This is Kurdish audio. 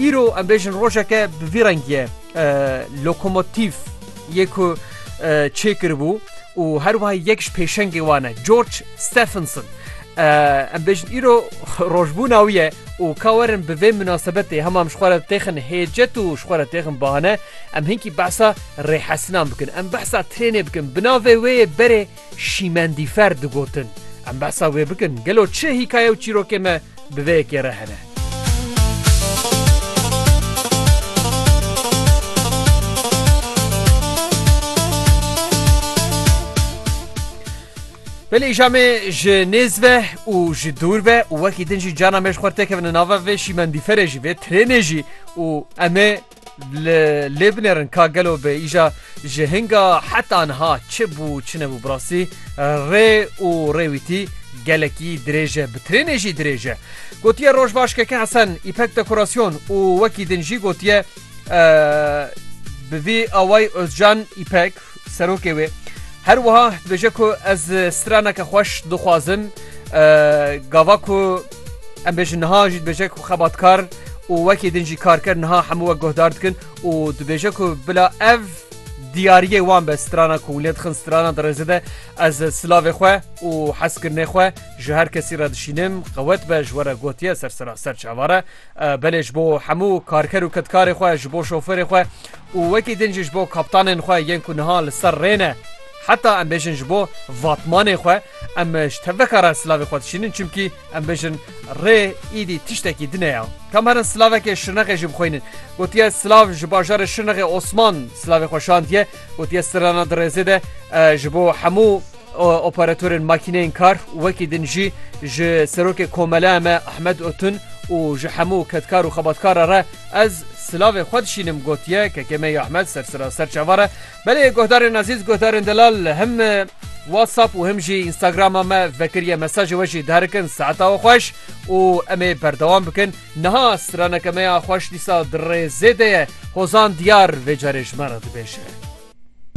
Îro em bêjin rojeke bi vî rengiyê lokomotîf yê ku çêkiribû û her wiha yek ji pêşengê wan e George Stephenson. Em bêjin îro rojbûna wî ye û ka werin bi vê minasebetê hema em ji xwe re têxin hêcet û ji xwe re têxin bahane em hinkî behsa rêhesinan bikin. Em behsa trênê bikin bi navê wê yê berê Şîmendîfer digotin, Em behsa wê bikin, gelo çi hîkaye û çîrokê me bi vê yekê re hene? Belê îşa me ji nêz ve û ji dûr ve û wekî din jî cana me ji xwe têkevin nava vê şîmendîferê jî vê trênê jî û em ê Li lê binêrin ka gelo bi îja ji hinga heta niha çi bû çi nebû bi rastî rê û rêwîtî gelekî dirêj e bi trênê jî dirêj e. Gotiye roj baş keke Hesen îpek dekorasyon û wekî din jî gotiye bi vî awayî Ozcan îpek Serokê wê her wiha dibêje ku ez straneke xweş dixwazim gava ku em bêjin niha jî dibêje ku xebatkar û wekî din jî kar kir niha hemû we guhdar dikin û dibêje ku bila ev diyariyê wan be strana ku lê dixin strana dirêze de ez silavê xwe û hezkirinê xwe ji her kesî re dişînim qewet be ji we re gotiye ser seraser çavare belê ji bo hemû karker û kedkarê xwe, ji bo şoferê xwe û wekî din jî ji bo kaptanên xwe yên ku niha li ser rê ne. Heta em bêjin ji bo vatmanê xwe em ji teveka re silavê xwe dişînin çimkî em bêjin rê îdî tiştekî din e ya. Kam herin silavekê Şirnexê jî bixwînin. Gotiye silav ji bajarê Şirnexê Osman silavê xwe şandiye. Gotiye sirana di rêzê de ji bo hemû Operatorên makîneyên kar wekî din jî ji Serokê Komeleya me Ahmed Otun û ji hemû kedkar û xebatkara re ez silavê xwe dişînim gotiye KKM'ê ya Ahmed sersera ser çavar e. Belê guhdarên ezîz guhdarên delal him WhatsApp û him jî Instagrama me vekiriye mesajê we jî diherikin saeta we xweş û em ê berdewam bikin. Niha straneke me ya xweş dîsa di rê zêde ye Hozan Diyar vê carê ji me re dibêje.